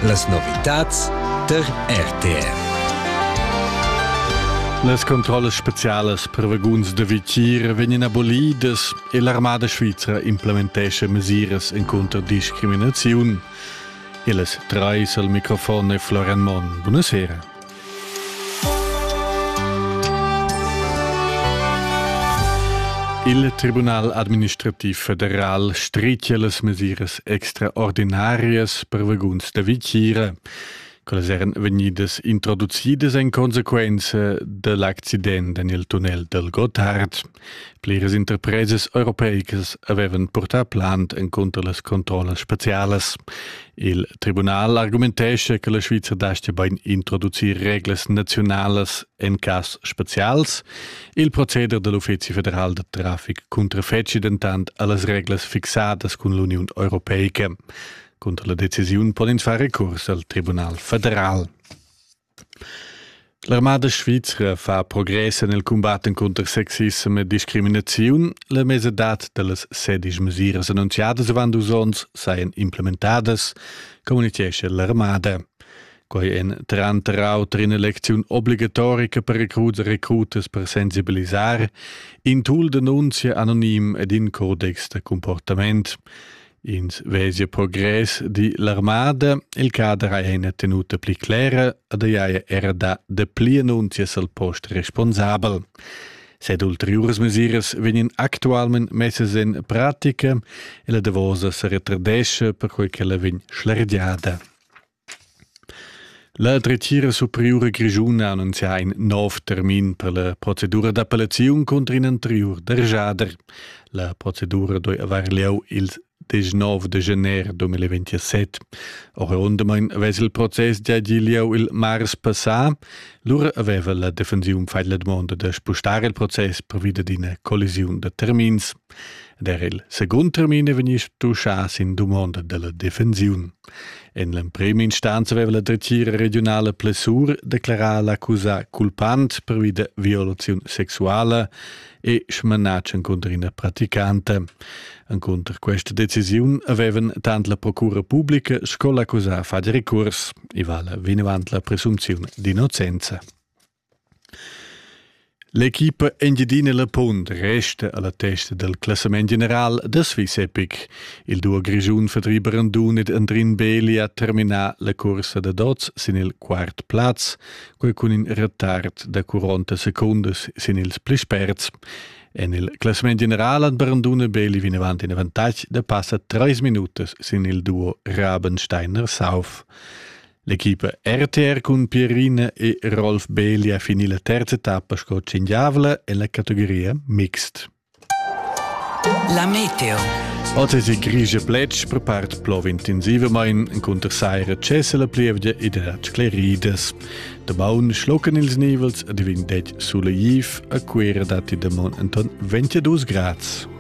Las novitads tar RTR. Las controllas specialas per vaguns da vitier vegnan abolidas e l'armada svizra implementescha mesiras encunter discriminaziun. Illes trais al microfon è Florian Monn. Buonasera. Il Tribunal administrativ federal stricia las mesiras extraordinarias per vaguns da vitgira. Quellas eran vegnidas introducidas en consequenza dell'accident en il tunnel del Gotthard. Pliras interpresas europeicas avevan purtà plant encunter las controllas spezialas. Il tribunal argumentescha che la Sviza dastga bain introducir reglas naziunalas en cas spezials. Il proceder da l'Uffizi federal da traffic cuntrafetgi dentant a las reglas fixadas cun l'Uniun europeica. Cunter la decisiun pon ins far recurs al Tribunal federal. L'armada svizra fa progress en il cumbat encunter sexissem e discriminaziun. La mesadad da las sedisch mesiras annunziadas avant dus onns sajan implementadas, communitgescha l'armada. Quai èn tranter auter in'elecziun obligatorica per recruts e recrutas per sensibilisar, in tool d'annunzia anonim ed in codex da comportament. Ins vesia progress di l'armada, il cader ha ina tenuta pli clera ed ei haja era da de pli annunzias al post responsabel. Sed ulteriores mesiras vegnan actualment messas in pratica e la davosa se retardesce per quei che la vegn schlergiada. La dretgira superiura grischuna ha annunzià in nov termin per la procedura d'appellaziun cunter in anteriur derschader. La procedura doi avair lieu ils 19 de gener 2027. Oriundamain avess il process gia gì lieu il mars passà. Lura aveva la defensiun fatg la dumonda da spustar il process pervi d'ina collisiun da termins. Der il secund termin è vegnì stuschà sin dumonda da la defensiun. En l'emprima instanza aveva la dretgira regiunala Plessur declarà l'accusà culpant pervi da violaziun sexuala e smanatsch encunter ina praticanta. Encunter questa decisiun avevan tant la procura pubblica sco l'accusà fatg recurs. I vala vinavant la presunziun d'innocenza. L'equipa Engiadina La Punt resta a la testa dal classament general da Swiss Epic. Il duo grischun Fadri Brandun ed Andrin Beli ha terminà la cursa da dots sin il quart plaz, quel cun in retard da 40 secundas sin ils pli sperts. En il classament general han Brandun e Beli vinavant in avantatg da passa trais minutas sin il duo Rabensteiner-Sauf. L'equipa RTR cun Pierina e Rolf Beeli ha finì la terza tappa sco tschingiavla en la categoria mixt. La meteo. Oz è grigia plets per part plo intensivamain cunter saira cessa la plievgia ed ha scleridas. Dabaun schlocken ils nivels a divin det suleiv a Cuera datti da mon Anton 22 grads.